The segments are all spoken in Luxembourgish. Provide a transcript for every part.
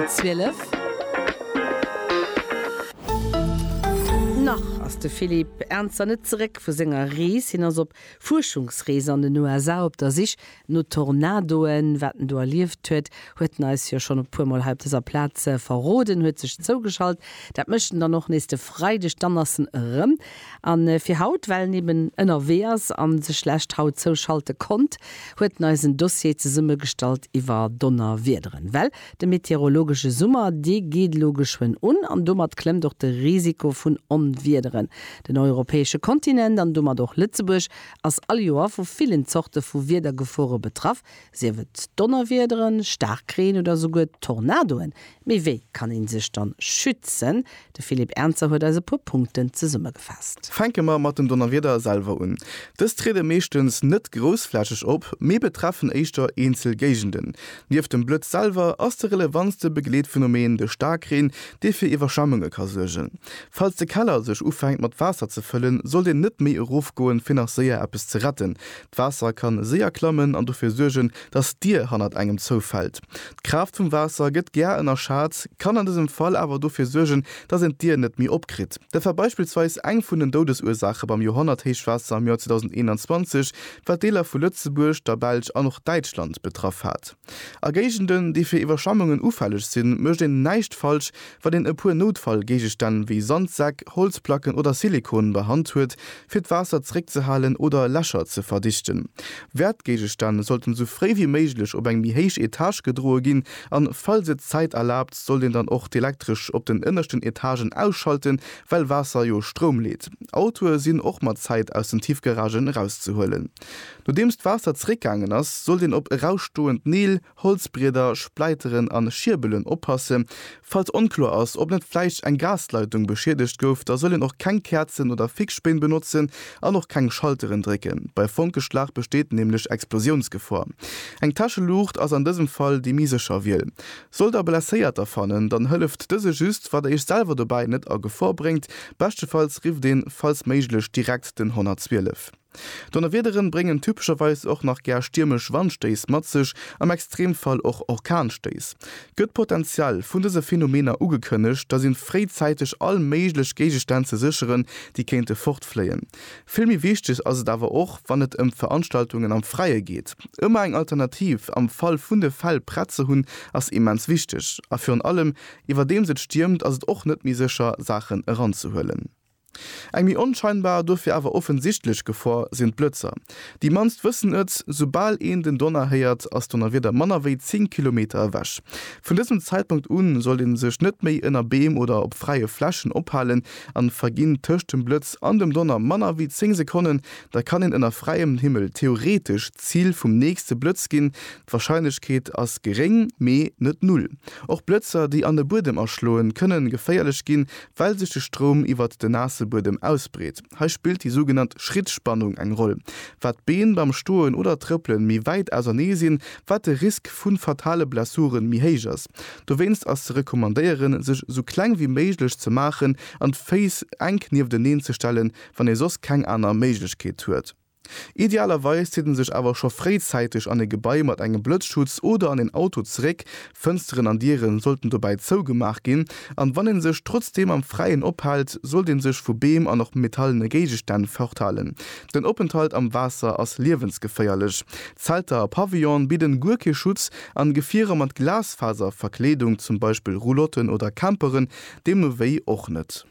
12. Nach ass de Philippe Ernzer net zeréck vu senger Rees. Hien ass op Fuerschungsrees an den USA op der Sich no Tornadoen. Wat en do erlieft huet, huet en eis jo schonn e puermol hei op dëser Plaz verroden, huet sech zougeschalt. Dat mécht en dann och nees de Freideg, dann ass en erëm. A fir haut, well en eben ënnerwee ass a sech lech haut zouschalte konnt, huet en eis en Dossier zesummegestallt iwwer Donnerwiederen. Well De meteorologesche Summer, dee geet elo geschwënn un an domat klëmmt och de Risiko vun Onwiederen. Den europäesche Kontinent an domat och Lëtzebuerg ass all Joer vu villen Zorte vu Wiedergefore betraff, sief et Donnerwiederen, Staarkreen oder souguer Tornadoen. Mee wéi kann ee sech dann schützen? De Philippe Ernzer huet eis e puer Punkten zesummegefaasst. Fänke mer mat den Donnerwieder selwer un. Dës triede meeschtens net groussflächeg op, mee betreffen éischter eenzel Géigenden. Nieft dem Blëtz selwer ass de relevanste Begleetphenomen de Staarkreen, dee fir Iwwerschwemmunge ka suergen. Falls de Keller sech ufänkt mat Waasser ze fëllen, sollt een net méi erofgoen, fir nach séier eppes ze retten. D'Waasser kann séier klammen an dofir suergen, dass d'Dier hannert engem zoufällt. D'Kraaft vum Waasser gëtt gär ënnerschat, kann an dësem Fall awer dofir suergen, dass een d'Dier net méi opkritt. Dat war beispillsweis eng vun den Doudesursaache beim Joerhonnerthéichwaasser am Joer 2021, wat Deeler vu Lëtzebuerg, der Belsch an och Däitschland betraff hat. A Géigenden, déi fir Iwwerschwemmungen ufälleg sinn, mécht een näischt falsch, wann een e puer Noutfallgéigestänn wéi Sandsäck, Holzplacken oder Silikon bei Hand huet, fir d'Waasser zréckzehalen oder Lächer ze verdichten. Wäertgéigestänn sollten sou fréi wéi méiglech op eng méi héich Etage gedroe ginn an falls et d'Zäit erlaabt, sollt een dann och d'Elektresch op den ënneschten Etagen ausschalten, well Waasser jo Stroum leet. Autoe sinn och mat Zäit aus den Tiefgaragen erauszehuelen. Nodeems d'Waasser zréckgaangen ass, sollt een op erausstoend Neel, Holzbrieder, Spläiteren an Schierbelen oppassen. Falls onkloer ass ob net vläicht eng Gasleitung beschiedegt gouf, da soll een och keng Käerzen oder Fixspéin benotzen an och keng Schalteren drécken. Bei Fonkeschlag besteet nämlech Explosiounsgefor. Eng Täscheluucht ass an dësem Fall déi méi sécher Wiel. Sollt der Blesséierter fannen, dann hëlleft dëse just wat der iech selwer dobäi net a Gefor bréngt. Beschtefalls rifft een falls méiglech direkt den 112. Donnerwiederen bréngen typescherweis och nach gär stiermesch Wandstéiss mat sech, am Extremfall och Orkanstéiss. Gëtt d'Potenzial vun dëse Phänomener ugekënnegt, da sinn fréizäiteg all méiglech Géigestänn ze sécheren, déi kéinte fortfléien. Vill méi wichteg ass et awer och, wann et ëm Veranstaltungen am Fräie geet. Ëmmer eng Alternativ am Fall vun de Fäll prett ze hunn, ass immens wichteg. A virun allem, iwwerdeems et stiermt, ass et och net méi sécher, Saachen eranzehuelen. Eng méi onscheinbar, dofir awer offensichtlech Gefor sinn d'Blëtzer. Déi mannst wëssen et, Soubal een den Donner héiert, ass d'Donnerwieder manner wéi 10 Kilometer ewech. Vun dësem Zäitpunkt un sollt ee sech net méi ënner Beem oder op fräie Flächen ophalen, an verginn tëscht dem Blëtz an dem Donner manner wéi 10 Sekonnen, da kann een ënner fräiem Himmel theoretesch d'Zil vum nächste Blëtz ginn, D'Warscheinlechkeet ass geréng, mee net null. Och Blëtzer, déi an e Buedem aschloen, kënnen geféierlech ginn, well sech de Stroum iwwert den naasse Buedem ausbreet. Hei spillt déi sougenannt Schrittspannung eng Roll. Wat d'Been beim Stoen oder Trëppelen méi wäit ausernee sinn, wat de Risk vu fatale Blessuren méi héich ass. Dowéinst ass ze recommandéieren, sech esou kleng wéi méiglech ze maachen an d'Féiss enk niefteneen ze stellen, wann ee soss keng aner Méiglechkeet huet. Idealerweis zitt en sech awer scho fréizäiteg an e Gebai mat engem Blëtzschutz oder an een Auto zeréck. Fënsteren an Dieren sollten dobäi zougemaach ginn, an wann een sech trotzdeem am Fräien ophält, sollt een sech vu Beem an och metallene Géigestänn forthalen. Den Openthalt am Waasser ass liewensgeféierlech. Zelter a Pavillone bidden guer kee Schutz, an Gefierer mat Glasfaserverkleedung, zum Beispill Roulotten oder Camperen, deemno wéi och net.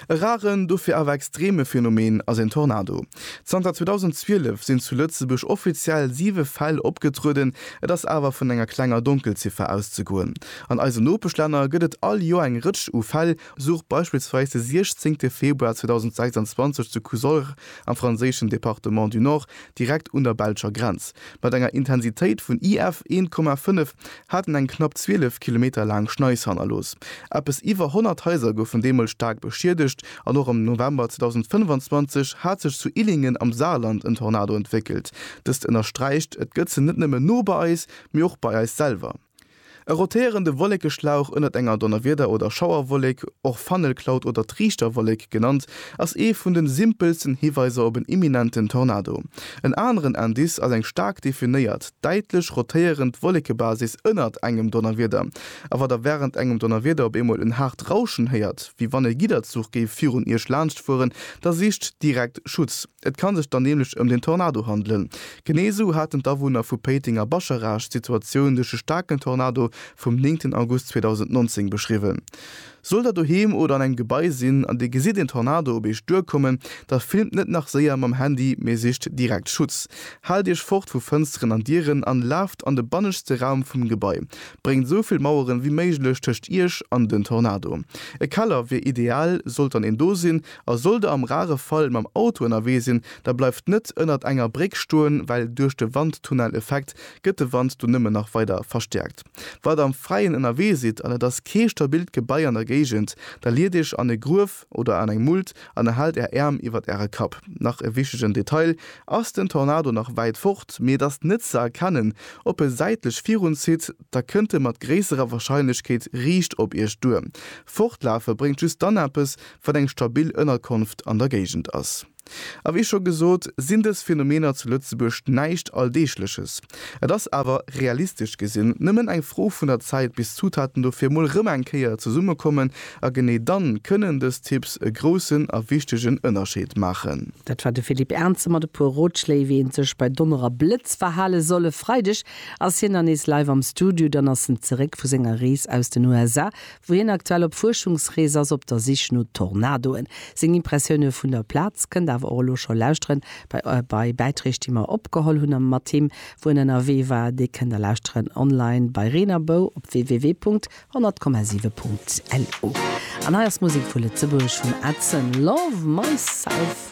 E raren, dofir awer extreme Phänomen ass een Tornado. Zanter 2012 sinn zu Lëtzebuerg offiziell siwe Fäll opgetrueden, et ass awer vun enger klenger Donkelziffer auszegoen. An eisen Nopeschlänner gëtt et all Joer eng Rëtsch u Fäll, sou beispillsweis de 16 Februar 2026 zu Cousolre am franséischen Département du Nord, direkt un der belscher Grenz. Mat enger Intensitéit vun IF 1,5 hat en eng knapp 12 Kilometer laang Schneis hannerlooss. Eppes iwwer 100 Haiser goufen deemools staark beschiedegt an och am November 2025 hat sech zu Illingen am Saarland en Tornado entwéckelt. Dëst ënnersträicht, Et gëtt se net nëmmen no bei eis, mee och bei eis selwer. E rotéierende Wolléckeschlauch, ënnert enger Donnerwieder oder Schauerwolléck och Funnel Cloud oder Triichterwolléck genannt, ass ee vun de simpelsten Hiweiser op en imminenten Tornado. En aneren Indice ass eng staark definéiert, däitlech rotéierend Wolléckebasis ënnert engem Donnerwieder. A wa der wärend engem Donnerwieder op eemol en haart Rauschen héiert, wéi wann e Gidderzuch géif virun Iech laanschtfueren, da sicht direkt Schutz. Et ka sech dann nämlech ëm den Tornado handelen. Genee esou haten d'Awunner vu Péiteng a Bascharage d'Situatioun duerch e staarken Tornado vum 9 August 2019 beschriwwen. Sollt der doheem oder an engem Gebai sinn an dir gesitt een Tornado op iech duerkommen, da filmt net nach séier mam Handy, mee sicht direkt Schutz. Haalt iech fort vu Fënsteren an Dieren an laaft an de banneschste Raum vum Gebai. Bréngt esou vill Maueren wéi méiglech tëscht iech an den Tornado. E Keller wier ideal, sollt dann een do sinn, A sollt der am rare Fall mam Auto ënnerwee sinn, da bleift net ënnert enger Bréck stoen, well duerch de Wandtunneleffekt gëtt de Wand do nëmmen nach weider verstäerkt. Wa der am Fräien ënnerwee sidd an et ass kee stabilt Gebai an der Géigend, da liet iech an e Gruef oder an eng Mult an a haalt är Äerm iwwert äre Kapp. Nach e wichtegen Detail, Ass den Tornado nach wäit fort, mee et ass net ze erkennen, ob e säitlech virun zitt, da kënnt e mat gréisserer Warscheinlechkeet riicht op iech duer. Fortlafe bréngt just dann eppes, wann eng stabil Ënnerkonft an der Géigend ass. A wéi scho gesot, sinn dës Phänomener zu Lëtzebuerg näischt Alldeegleches. Et ass awer, realistesch gesinn, nëmmen eng Fro vun der Zäit, bis d'Zutaten dofir emol rëm eng Kéier zesummekommen. A genee dann kënnen dës Tipps e groussen a wichtegen Ënnerscheed maachen. Dat war de Philippe Ernze mat e puer Rotschléi, wéi ee sech bei Donner a Blëtz verhale soll e Freideg. Ass hien dann nees live am Studio, dann ass en zeréck vu senger Rees aus den USA, wou hien aktuell op Fuerschungsrees ass op der Sich no Tornadoen. Seng Impressioune vun der Plaz kënnt awer och elo scho lauschteren bei Bäitreeg, déi mer opgeholl hunn a mat him, wou en ënnerwee war. Déi kënnt der lauschteren online bei Reen a Bou op www.100,7.lu. An hei ass Musek vu Lëtzebuerg vum Edson, Love Myself.